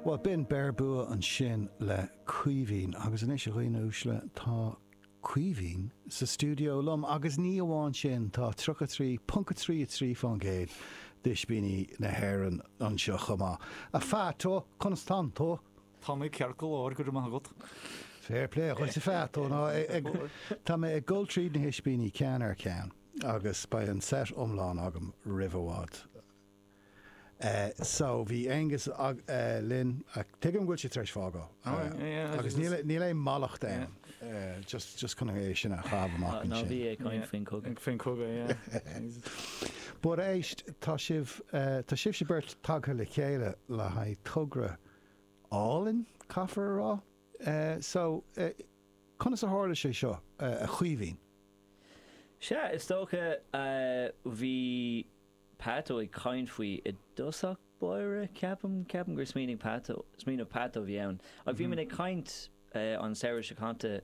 Bhuel, b'in Beir Bua ansin le Caoimhín. Agus anois, a dhaoine uaisle, tá Caoimhín sa stiúideo liom, agus ní amháin sin, tá 33.33 fán gcéad d'ispíní na hÉireann anseo chomh maith. A Pheaito, conas tá tú? Tá mé ceart go leor, go raibh maith agat. Fair play dhuit, a Pheaito. Ná ag, tá mé ag dul tríd na hispíní ceann ar cheann, agus beidh an set iomlán agam roimh i bhfad. so bhí Aonghus linn ach tuigim go bhfuil sé tar éis fágáil agus níl aon mallacht ann just chun é sin a chaitheamh amach ansin. Ná bí ag caint faoin chogadh. Faoin chogadh, yeah. But éist, tá sibh, tá sibhse beirt tagtha le chéile le haghaidh togra álainn, caithfear a rá, so conas a tharla sé seo, a Chaoimhín? Sea, is dócha, bhí. Peato ag caint faoi i dtosach báire ceapaim, ceapaim gur smaoinigh Pat, smaoineamh Peato a bhí ann ach bhí muid ag caint an samhradh seo caite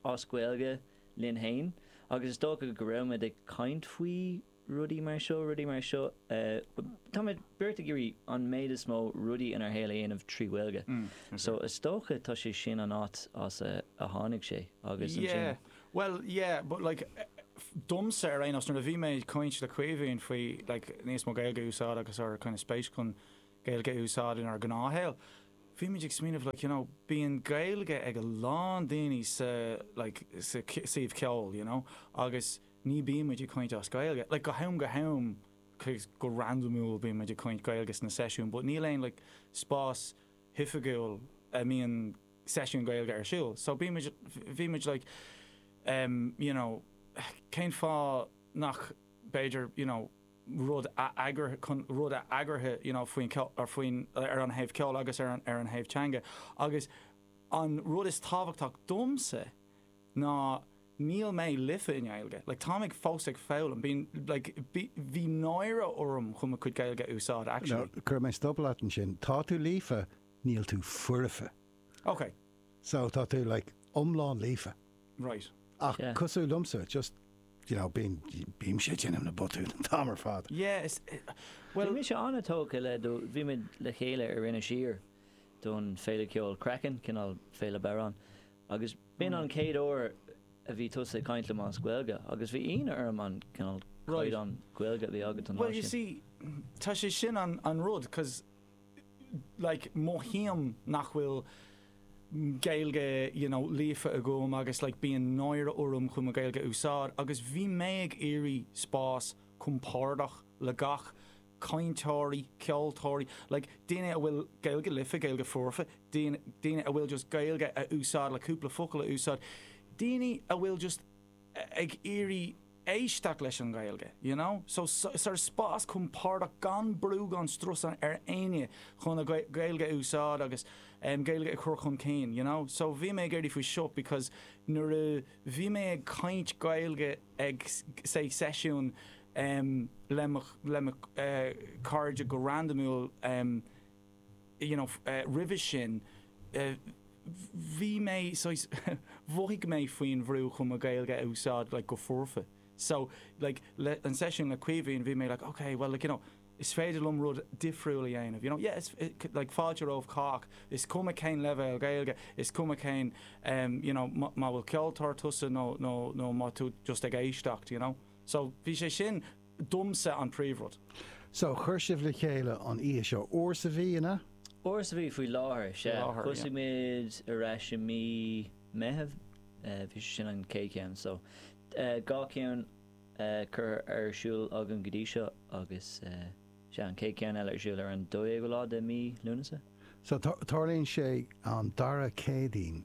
as Gaeilge linn fhéin agus is dócha go raibh muid ag caint faoi rudaí mar seo, rudaí mar seo, tá muid beirt ag iarraidh an méid is mó rudaí inár shaol a dhéanamh trí Ghaeilge so is dócha tá sé sin an áit as a tháinig sé agus ansin. Bhuel, yeah, but like, domsa ar aon nós, nuair a bhí mé ag caint le Caoimhín faoi like níos mó Gaeilge a úsáid agus ár kind of spéis chun Gaeilge a úsáid inár ngnáthshaol, bhí muid ag smaoineamh like you know bíonn Gaeilge ag a lán daoine sa like sa suíomh ceoil you know agus ní bíonn muid ag caint as Gaeilge, like go ham go ham cause go randamúil bíonn muid ag caint Gaeilge sna seisiúin but níl aon like spás hoifigiúil a mbíonn seisiún Gaeilge ar siúl so bhí muid, bhí muid like em you know cén fáth nach b'fhéidir you know rud a eagrú chun rud a eagraithe you know faoin ceol, faoin, ar an thaobh ceoil agus ar an, ar an thaobh teanga agus an rud is tábhachtach domsa ná níl mé líofa i nGaeilge like táim ag fós ag foghlaim bíonn like bhí, bhí náire orm chun mo chuid Gaeilge a úsáid actually. Now, cuirfidh mé stop leat ansin. Tá tú líofa. Níl tú foirfe. Ok. So tá tú like iomlán líofa. Right. Ach Yeah. cosúil liomsa, just, you know, bím, bímse ag déanamh na botúin an t-am ar fad. Yeah, is, eh, Bhí bhuel, mise an-tógtha le do, bhí muid le chéile ar Inis Oírr don Féile Ceoil Craiceann, cineál Féile bodhrán, agus b'in an chéad uair a bhí tusa ag caint liom as Gaeilge agus bhí ionadh orm an cineál Right. caighdeán Gaeilge a bhí agat an lá well, you sin. see, tá sé sin an, an rud, 'cause like mothaím nach bhfuil Gaeilge you know líofa agam agus like bíonn náire orm chun mo Gaeilge a úsáid agus bhí mé ag iarraidh spás compordach le gach cainteoirí, ceoltóirí, like daoine a bhfuil Gaeilge líofa, Gaeilge foirfe, daoine, daoine a bhfuil just Gaeilge á úsáid le cúpla focal a úsáid, daoine a bhfuil just ag iarraidh. éisteacht leis an Ghaeilge you know so sort of spás compordach gan brú gan strus ar éinne chun a Gaeilge a úsáid agus Gaeilge a chur chun cinn you know so bhí mé ag iarraidh faoi seo because nuair a bhí mé ag caint Gaeilge ag say seisiún le mo le mo chairde go randamúil you know roimhe sin bhí mé saghas mhothaigh mé faoin bhrú chun mo Ghaeilge a úsáid like go foirfe so like le an seisiún le Caoimhín bhí mé like ok well like you know is féidir liom rud difriúil a dhéanamh you know yeah is like fáilte roimh cách is cuma cén leibhéal Gaeilge is cuma cén em you know má bhfuil ceoltóir tusa nó nó nó má tú just ag éisteacht you know so bhí sé sin domsa an príomhrud. So, chuir sibh le chéile an oíche seo. Uair sa mhí, an ea? Uair sa mhí faoi láthair, sea. Thosaigh muid ar ais i mí Meithimh, bhí sé sin an chéad cheann. So, dhá cheann curtha ar siúl againn go dtí seo agus sea, an chéad cheann eile ar siúl ar an 12ú lá de mí Lúnasa. So, tarlaíonn sé an dara Céadaoin.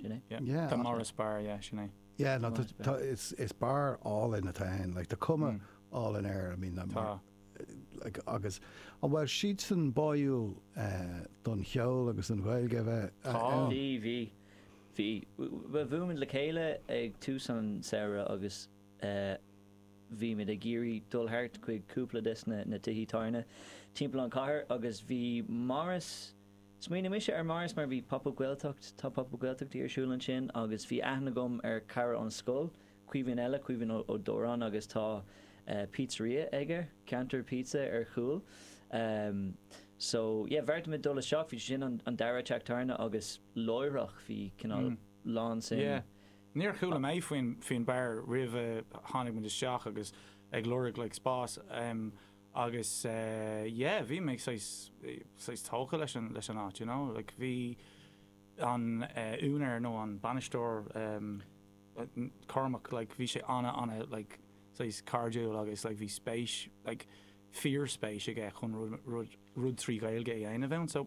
Sin é? Yeah. Tá Maureen's Bar, yeah, sin é. Yeah, no, tá, tá, is, is beár álainn atá ann, like, tá cuma álainn air, I mean, Tá. like, agus, an bhfuil siadsan báúil eh, don cheol agus don Ghaeilge a bheith eh, Tá. ann? Bhí, bhí, bhí. Bhuel, bhuail muid le chéile ag tús an samhraidh agus eh, bhí muid ag iarraidh dul thart chuig cúpla des na, na tithí tábhairne timpeall an chathair agus bhí Maureen's, Smaoinigh mise ar Maureen's mar bhí Pop Up Gaeltacht, tá Pop Up Gaeltachtaí ar siúl ansin agus bhí aithne agam ar cara ón scoil, Caoimhín eile, Caoimhín Ó Dóráin agus tá pizzeria aige, Ceantar Pizza ar chúl. So, yeah, bheartaigh muid dul isteach, bhí sé sin an dara teach tábhairne agus láithreach bhí cineál lán sin. Yeah. Níor chuala mé faoin faoin beár roimh a tháinig muid isteach agus ag lorg like spás. agus yeah bhí mé saghas saghas tógtha leis an leis an áit you know like bhí an úinéar nó an bainisteoir Cormac like bhí sé ana ana like saghas cairdiúil agus like bhí spéis like fíor spéis aige chun rud rud rud trí Ghaeilge a dhéanamh ann so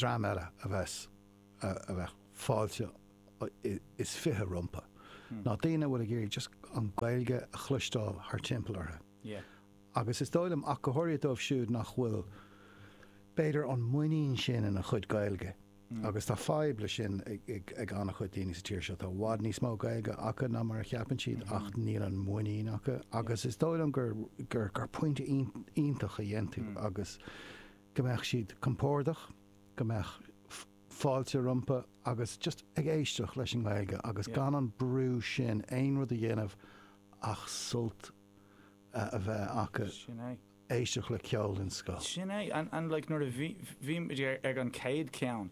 dream eile a bheadh fáilte is fiche rompu ná daoine a bhfuil ag iarraidh just an Ghaeilge a chloisteáil thar timpeall orthu agus is dóigh liom ach go háirithe dóibh siúd nach bhfuil b'fhéidir an mhuinín sin ina chuid Gaeilge. agus tá fadhb leis sin ag an-chuid daoine sa tír seo, tá i bhfad níos mó Gaeilge acu ná mar a cheapann siad ach níl an muinín acu agus is dóigh liom gur gur gur pointe iontach a dhein tú agus go mbeadh siad compordach go mbeadh fáilte rompu agus just ag éisteach leis an nGaeilge agus gan an brú sin aon rud a dhéanamh ach sult a bheith acu sin é. éisteacht le ceol an sceo. Sin é an an like nuair a bhí bhí muid ag ag an chéad ceann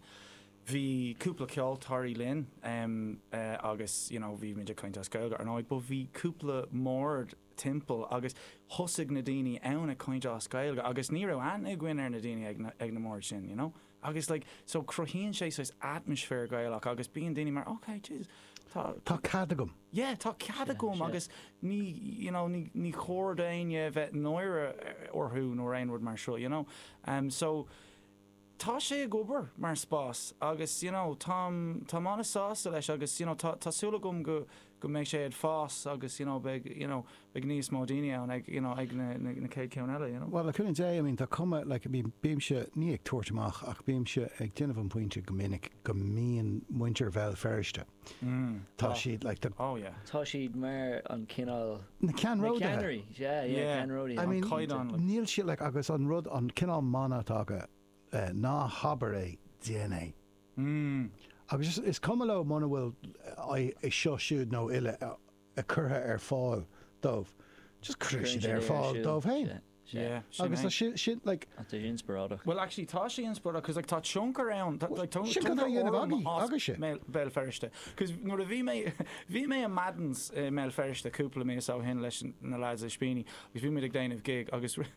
bhí cúpla ceoltóirí linn em eh agus you know bhí muid ag caint as Gaeilge ar ndóigh but bhí cúpla mbord timpeall agus thosaigh na daoine ann ag caint as Gaeilge agus ní raibh aithne againn ar na daoine ag na ag na mbord sin you know. Agus like so cruthaíonn sé saghas atmaisféar Gaelach agus bíonn daoine mar ok Jesus tá Tá cead agam. yeah tá cead Sea, agam sea. agus ní you know ní ní chóir do dhaoine a bheith náire orthu nó aon rud mar seo you know em so tá sé ag obair mar spás agus you know táim táim an-sásta leis agus you know tá tá súil agam go go mbeidh sé ag fás agus you know beidh you know beidh níos mó daoine ann ag you know ag na na chéad ceann eile you know. Bhuel le cúnamh Dé I mean tá cuma like I mean bímse ní ag tabhairt amach ach bímse ag déanamh an pointe go minic go mbíonn muintir Bhéal Feirste tá siad like the oh yeah tá siad mar an cineál na ceannródaithe yeah yeah ceannródaithe I mean caighdeán níl siad like agus an rud an cineál mana atá acu ná habair é déan é Mmm. Agus is cuma leo muna bhfuil é seo siúd nó eile curtha ar fáil dóibh, just cuireann siad é ar fáil dóibh féin. Agus tá sin like. Tá sé inspioráideach. Well actually tá sé inspioráideach cos like tá tionchar ann, tá tionchar orm agam as Béal Feirste. Cos nuair a bhí mé bhí mé i Madden's i mBéal Feirste cúpla míosa ó shin leis na lads Ispíní agus bhí muid ag déanamh gig agus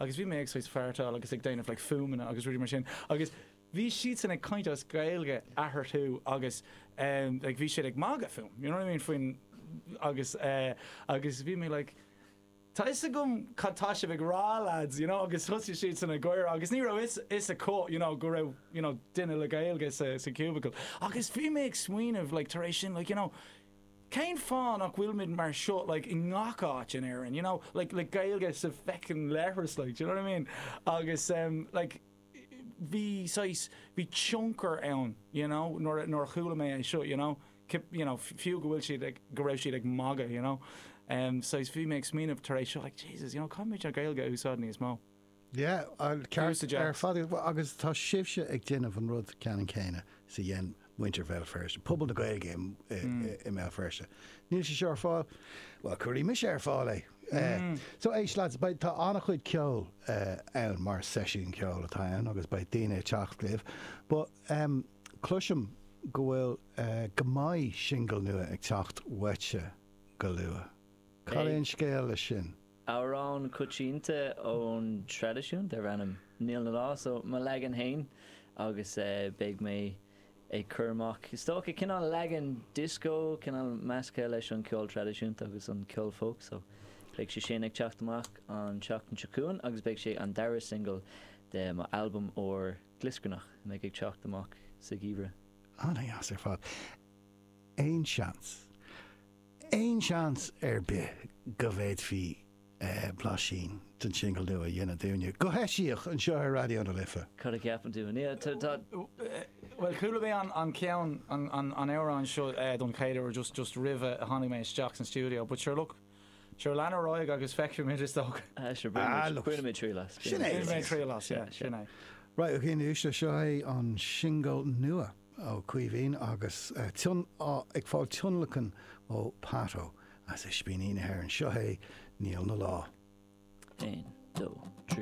agus bhí mé ag saghas feartáil agus ag déanamh like fuaimeanna agus rudaí mar sin agus bhí siadsan ag caint as Gaeilge eatharthu agus em like bhí siad ag magadh fúm you know what I mean faoin agus eh agus bhí mé like Tá a fhios agam cad tá sibh ag rá lads you know agus thosaigh siadsan ag gáire agus ní raibh a fhios acu you know go raibh you know duine le Gaeilge sa sa cubicle agus bhí mé ag smaoineamh like tar éis sin like you know Cén fáth nach bhfuilimid mar seo like i ngach áit in Éirinn you know like like Gaeilge sa bhfeckin leithreas like do you know what I mean agus em like bhí saghas bhí tionchar ann you know nuair a nuair a chuala mé é seo you know cip you know fiú go bhfuil siad ag go raibh siad ag magadh you know em saghas bhí mé ag smaoineamh tar éis seo like Jesus you know caithfidh mé an Ghaeilge a úsáid níos mó Yeah, ceart ar fad agus tá sibhse ag déanamh an rud ceannann céanna is a dhein muintir Bhéal Feirste, pobal na Gaeilge i mBéal Feirste. Níl sé seo ar fáil? Bhuel, cuirfidh mise ar fáil é. So éist lads, beidh, tá an-chuid ceoil ann mar seisiún ceoil atá ann agus beidh daoine ag teacht libh but cloisim go bhfuil, go mbeidh singil nua ag teacht uaitse go luath. Cad é an scéal leis sin? Amhrán coitianta ón traidisiún darb ainm 'Níl 'na Lá', so mo leagan fhéin agus beidh mé ag cur amach is dócha cineál leagan disco cineál measctha leis an ceol traidisiúnta agus an ceol folk so beidh sé sin ag teacht amach an tseachtain seo chugainn agus beidh sé an dara singil de mo albam úr glioscarnach a bheidh ag teacht amach sa gheimhreadh. Ana-dheas ar fad. Aon seans. Aon seans ar bith go bhféadfaí blaisín den singil nua a dhéanamh dúinne, go heisiach, anseo ar Raidió na Life? Cad a cheapann tú? Bhuel, chuala mé an ceann, an amhrán seo don chéad uair just, just roimhe a tháinig mé isteach san stiúideo but sure look, sure lean ar aghaidh agus feicfimid is dócha. Ah, sure, bainfimid triail as. Sin é. Bainfimid triail as, yeah, sin é. Right, oké, anois seo é an singil nua. Ó Caoimhín agus ag fáil tionlacan ó Pato as Ispíní na hÉireann. Seo é Níl 'na Lá. 1, 2, 3.